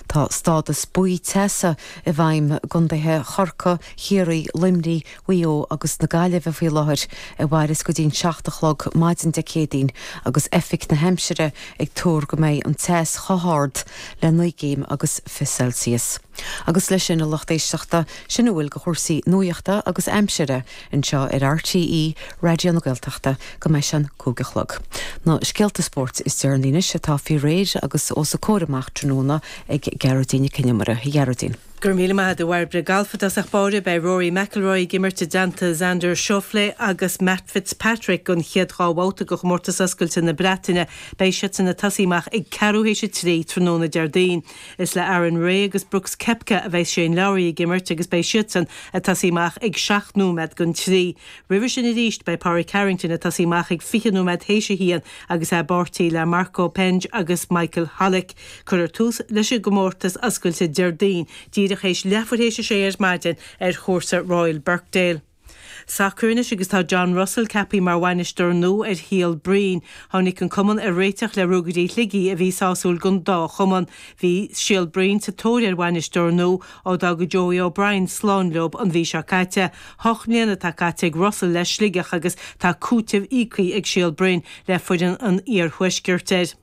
Tá stádas buí teasa i bhfeidhm i gContaetha Chorcaí, Chiarraí, Luimnigh, Mhaigh Eo agus na Gaillimhe faoi láthair a mhairfeas go dtí an seacht a chlog maidin Dé Céadaoin agus oifig na haimsire ag tuar go mbeidh an teas chomh hard le naoi gcéim agus fiche Celsius. Agus leis sin a lucht éisteachta, sin a bhfuil de chúrsaí nuachta agus aimsire. anseo ar RTÉ Raidió na Gaeltachta go mbeidh sé an cúig a chlog. Na scéalta spóirt is deireanaí anois atá faoi réir agus os a comhair amach tráthnóna ag Gearóidín Nic An Iomaire. A Ghearóidín. Go raibh míle maith a'd, a Bhairbre. Galf i dtosach báire, beidh Rory McIlroy ag imirt i dteannta Xander Schauffele agus Matt Fitzpatrick an chéad dhá bhabhta de Chomórtas Oscailte na Breataine. Beidh siadsan ag tosaí amach ag ceathrú théis a trí tráthnóna Déardaoin. Is le Aaron Rai agus Brooks Koepka a bheidh Shane Lowry ag imirt agus beidh siadsan ag tosaí amach ag seacht nóiméad don trí. Roimhe sin arís beidh Pádraic Harrington ag tosaí amach ag fiche nóiméad théis a haon agus é i bpáirtí le Marco Penge agus Michael Hollick. Cuirfear tús leis an gcomórtas oscailte Déardaoin díreach théis leathuair théis a sé ar maidin ar chúrsa Royal Birkdale. sacar anois agus tá John Russell ceaptha mar bhainisteoir nua ar Shíol Broin. Tháinig an cumann ar réiteach le Ruagairí Shligigh a bhí sásúil don dá chumann. Bhí Síol Broin sa tóir ar bhainisteoir nua ó d'fhág Joey O'Brien slán leo an mhí seo caite. Hocht mbliana atá caite ag Russell le Sligeach agus tá cúiteamh íoctha ag Síol Broin le foireann an iarthuaiscirt ar.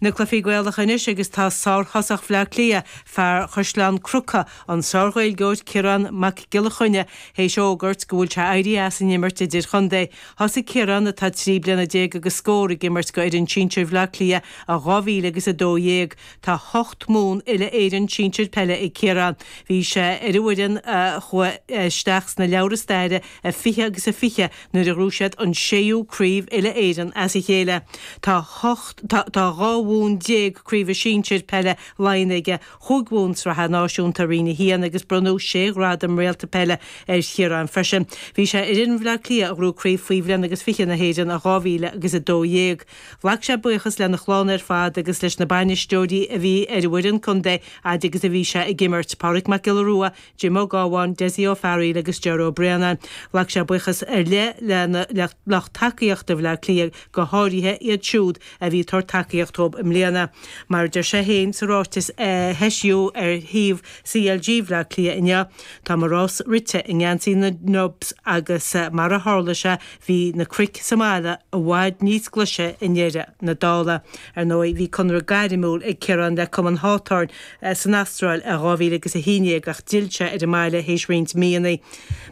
Na cluifí Gaelacha anois agus tá sárthosach Bhleá Cliath, fear Chaisleán Cnucha, an sárGhaeilgeoir Ciarán Mac Giolla Chainnigh, théis a fhógairt go bhfuil sé ag éirí as an imirt idirchontae. Thosaigh Ciarán, atá trí bliana déag agus scór, ag imirt go fhoireann sinsir Bhleá Cliath i dhá mhíle agus a dó dhéag. Tá hocht mbonn uile Éireann sinsir peile ag Ciarán. Bhí sé ar an bhfoireann a chuaigh isteach sna leabhra staire i fiche agus a fiche, nuair a ghnóthaigh siad an séú craobh uile-Éireann as a chéile. Tá hocht, tá, tá dhá bhonn déag craoibhe sinsir peile Laighean aige, chúig bhonn Sraithe Náisiúnta Roinn a hAon agus bronnadh sé ghradam réalta peile ar Chiarán freisin. Bhí sé ar fhoireann Bhleá Cliath a ghnóthaigh craobh faoi bhliain agus fiche na hÉireann in 2012. Ghlac sé buíochas lena chlann ar fad agus leis na bainisteoirí a bhí ar an bhfoireann contae fhaid agus a bhí sé ag imirt, Pádraig Mac Giolla Rua, Jim Ó Gabháin, Dessie Ó Fearghail agus Ger Ó Braonáin. Ghlac sé buíochas ar leith le lucht tacaíochta Bhleá Cliath, go háirithe iad siúd a bhí ag tabhairt tacaíocht dhób i mbliana. Mar a deir sé féin sa ráiteas a heisíodh ar shuíomh CLG Bhleá Cliath inniu, Tá mo rás rite i ngeansaí na nDubs agus mar a tharla sé bhí na cnoic sa mbaile i bhfad níos glaise i ndeireadh na dála. Ar ndóigh bhí conradh gairmiúil ag Ciarán le Cumann Hawthorn, san Astráil i 2000 agus 11 ach d'fhill sé ar an mbaile théis roinnt míonna.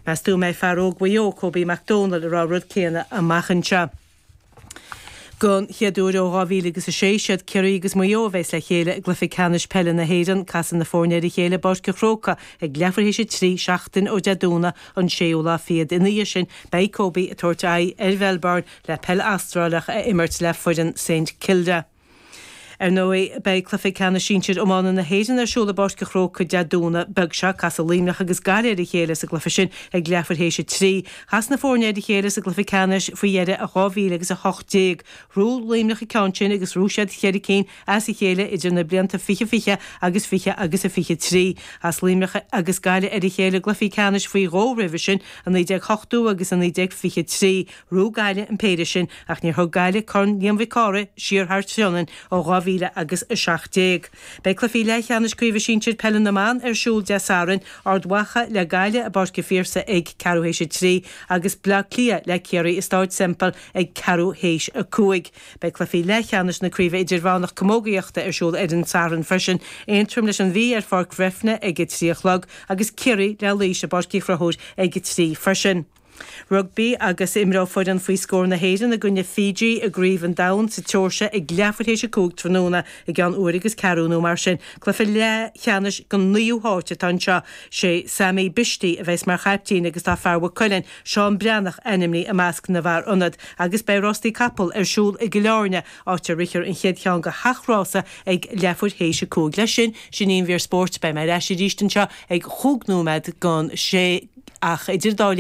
Meas tú an mbeidh fear óg Mhaigh Eo, Kobe McDonald, ag rá an rud céanna amach anseo? Don chéad uair ó 2000 agus 6, is iad Ciarraí agus Maigh Eo a bheas le chéile i gcluiche ceannais peile na hÉireann. Casfaidh na foirne ar a chéile i bPáirc an Chrócaigh ag leathuair théis a trí, seachtain ó Dé Domhnaigh an 6ú lá fichead. Ina dhiaidh sin, beidh Kobe ag tabhairt aghaidh ar Mhelbourne le peil Astrálach a imirt le foireann Saint Kilda. Ar ndóigh, beidh Cluiche Ceannais Sinsir Iomána na hÉireann ar siúl i bPáirc an Chrócaigh Dé Domhnaigh beag seo. Casfaidh Luimneach agus Gaillimh ar a chéile sa gcluiche sin ag leathuair théis a trí. Chas na foirne ar a chéile sa gcluiche ceannais faoi dheireadh i 2018. Ghnóthaigh Luimneach an ceann sin agus ghnóthaigh siad cheithre cinn as a chéile idir na blianta 2020 agus 20 agus a 23. Chas Luimneach agus Gaillimh ar a chéile i gcluichí ceannais faoi dhó roimhe sin, i 1980 agus i 1923. Ghnóthaigh Gaillimh an péire sin ach níor thug Gaillimh Corn Liam Mhic Cárthaigh siar thar Sionainn ó 2000 agus 17. Beidh cluichí leathcheannais Craoibhe Sinsir Peile na mBan ar siúl Dé Sathairn, Ard Mhacha le Gaillimh i bPáirc an Phiarsaigh ag ceathrú théis a trí agus Bleá Cliath le Ciarraí i Staid Semple ag ceathrú théis a cúig. Beidh cluichí leathcheannais na Craoibhe Idirmheánach Camógaíochta ar siúl ar an Satharn freisin, Aontroim leis an Mhí ar Pháirc Bhreifne ag a trí a chlog agus Ciarraí le Laois i bPáirc Uí Chonchúir ag a trí freisin. Rugbaí agus imreoidh foireann faoi scór na hÉireann i gcoinne Fiji i gCraobh an Domhain sa tSeoirsia ag leathuair théis a cúig tráthnóna, i gceann uair agus ceathrú nó mar sin. Cluiche leathcheannais don naoú háit atá anseo. Sé Sami Bishti a bheas mar chaiptín agus tá fear Mhaigh Cuilinn, Seán Breathnach ainmnithe i measc na bhfear ionad agus beidh rástaí capall ar siúl i gCill Áirne, áit a rithfear an chéad cheann de sheacht rása ag leathuair théis a cúig. Leis sin, sin í an mhír spóirt. Beidh mé ar ais arís anseo ag chúig nóiméad don sé ach idir an dá linn,